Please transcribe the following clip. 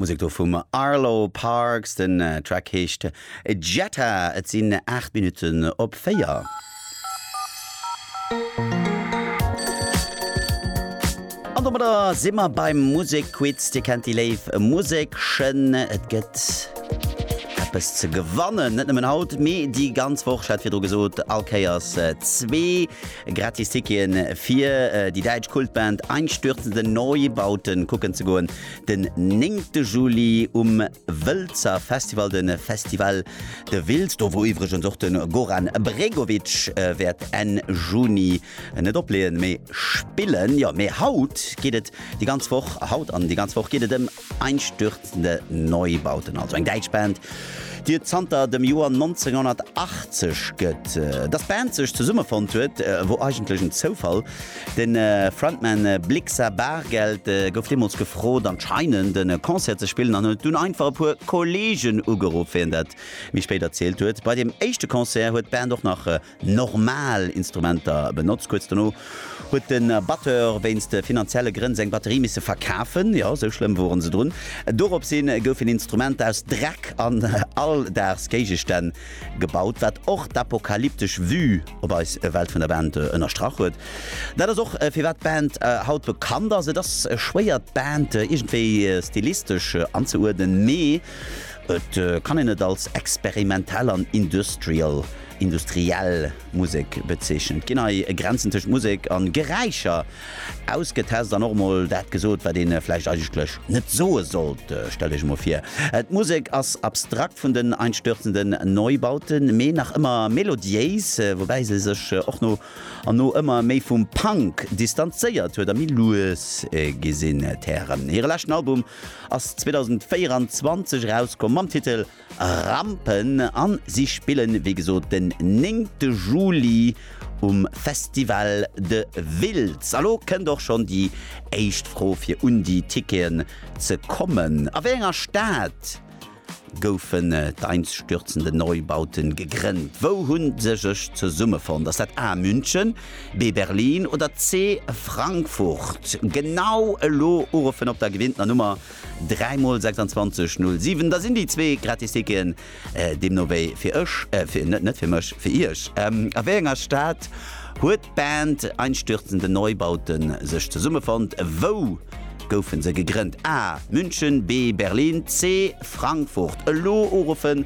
D'Musek do vum Arlo Parks, den Track heescht Jetta. Et sinn 8 Minutten op 4. An domadder si mer beim Musekquiz. Dir kennt déi léif Musekchen. Et gëtt eppes ze gewannen. Net nëmmen haut, mee déi ganz Woch. Ech hat virdru gesot, all Kéiers äh, zwee gratis Tickien fir äh, déi däitsch Kultband Einstürzende Neubauten kucken ze goen. Den 9. Juli um Wëlzer Festival, de Festival de Wiltz, do wou iwwregens och de Goran Bregovic äh, wäert Enn Juni Net opleeën, mee spillen! Jo, mee haut geet et déi ganz Woch, haut an déi ganz Woch geet et ëm einstürzende Neubauten, also eng däitsch Band, déi et zanter dem Joer 1980 gëtt. Dass d'Band sech zesummefonnt huet, wor eigentlech en Zoufall. De Frontman Blixa Bargeld gouf deemools gefrot, anscheinend e Concert ze spillen an huet dunn einfach e puer Kollegen ugeruff, wéi en dat méi spéit erzielt huet. Bei deem éischte Concert huet d'Band och nach normal Instrumenter benotzt. Kuerz dono huet de Batteur wéinst finanzielle Grënn seng Batterie misse verkafen, jo, esou schlëmm wore se drun. Doropshi goufen Instrumenter aus Dreck an Alldagsgéigestänn gebaut, wat och d'apokalyptesch Vue op eis Welt vun der Band ënnerstrach huet. Dat ass och firwat d'Band haut bekannt ass. Et ass schwéier d'Band iergendwéi stilistesch anzeuerdnen, mee et kann een et als experimentell an industrial industriell Musek bezeechent, ginn hei Grenzen tëscht Musek a Geräischer ausgetest an och emol dat gesot, wat ee vläicht eigentlech net soe sollt. Stellt Iech emol vir, d'Musek ass abstrakt vun den einstürzenden Neubauten, mee nach ëmmer melodiéis, woubäi se sech och no an no ëmmer méi vum Punk distanzéiert huet a méi lues gi sinn. D'Hären hire leschten Album ass 2024 erauskomm mam Titel. Rampen an si spillen wéi gesot den néngte Juli um Festival de Wiltz. A lo kënnt och schonn déi éischt Fro fir un déi Ticketen ze kommen. A wéi enger Stad goufen d'einstürzende Neubauten gegrënnt? Wou hunn se sech zesummefonnt? Ass dat A München, B Berlin oder C Frankfurt? Genau elo uruffen op der gewinntener Nummer. 3 mol 26 0 7 da sinn déi zwee Gratisticken deemno wéi fir ech, fir net net fir mech, fir iech. A wéi enger Stad huet d'Band Einstürzende Neubauten sech zesummefonnt? Wou goufe se gegrënnt? A, München, B, Berlin, C, Frankfurt. Elo uruffen